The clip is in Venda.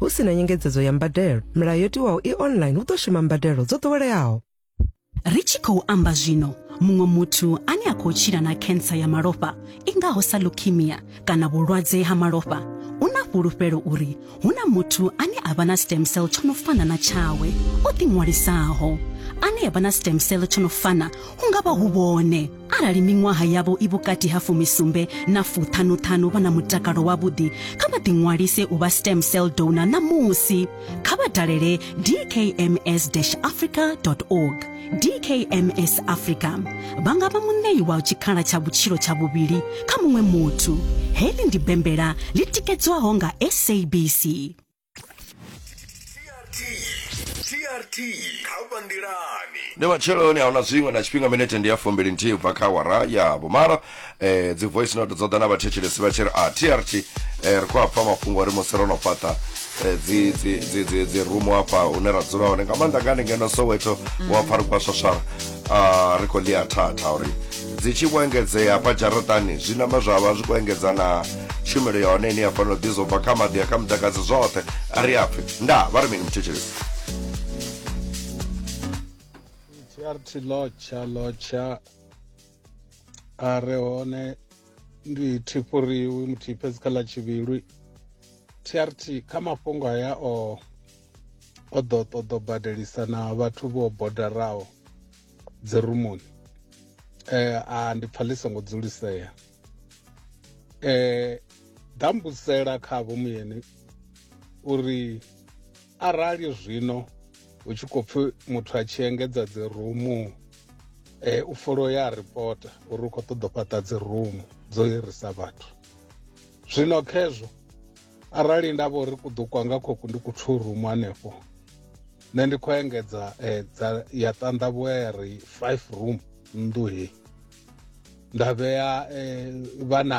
hu si na nyengedzedzo ya mbadelo milayo yo tiwaho i online hu ḓo shuma mbadelo dzo ḓoweleaho ri tshi khou amba zwino muṅwe muthu ane a khou tshila na khensa ya malofha i ngaho sa leukemia kana vhulwadze ha malofha u na fhulufhelo uri hu na muthu ane a vha na stem cell tsho no fana na tshawe o ḓiṅwalisaho ane a vha na stem cell tsho no fana hu nga vha hu vhone arali miṅwaha yavho i vhukati ha fumisumbe na fuṱhanuṱhanu vha na mutakalo wavhuḓi kha vha ḓiṅwalise u vha stem cell donor ṋamusi kha vha dalele dkms-africa org dkms africa vha nga vha muṋei wa tshikhala tsha vhutshilo tsha vhuvhili kha muṅwe muthu heḽi ndi bembela ḽi tikedzwaho nga sabc trt kha vha nḓilani ndi matsheloni ahuna zwiṅwe na tshifhinga minete ndi ya fumbili nthihi ubva kha awara ya vhumalo eh, dzi voice note dzo ḓa na vhathetshelesi vha tshi ri a trt eh, ri khou apfa mafhungo ri musi ro no fhaṱa eh, dzi- dzi- dzi- dzi- dzi rumu hafha hune ra dzula hone nga maanḓa ngani ngeno soweto wa pfa ri khou swaswara Ah, ri khou ḽia thatha uri dzi tshi vho engedzea hafha dzharaṱani zwi namba zwa vha zwi khou engedza na tshumelo ya hone ine ya fanela ḓi zwo bva kha maḓi a kha muḓagasi zwoṱhe a ri apfe nda vha ri mini mutshetshelesi trt lotsha lotsha a re hone ndi thifuriwi muthihi fhedzi kha ḽa tshivhilwi trt kha mafhungo aya o o ḓo ṱoḓo badelisa na vhathu vho bodaraho dzirumuni um a ndi pfha ḽi songo dzulisea eh dambusela khavho muyeni uri arali zwino hu tshi khou pfi muthu a tshi engedza dzi rumu eh u folo ya reporta uri u khou ṱoḓa fhaṱa dzi rumu dzo hirisa vhathu zwino khezwo arali nda vha uri ku ḓo kwanga khokhu ndi ku two rumu hanefho nṋe ndi khou engedza eh, dza ya ṱanḓavhuya ya ri five room nnḓu he nda vhea eh, vhana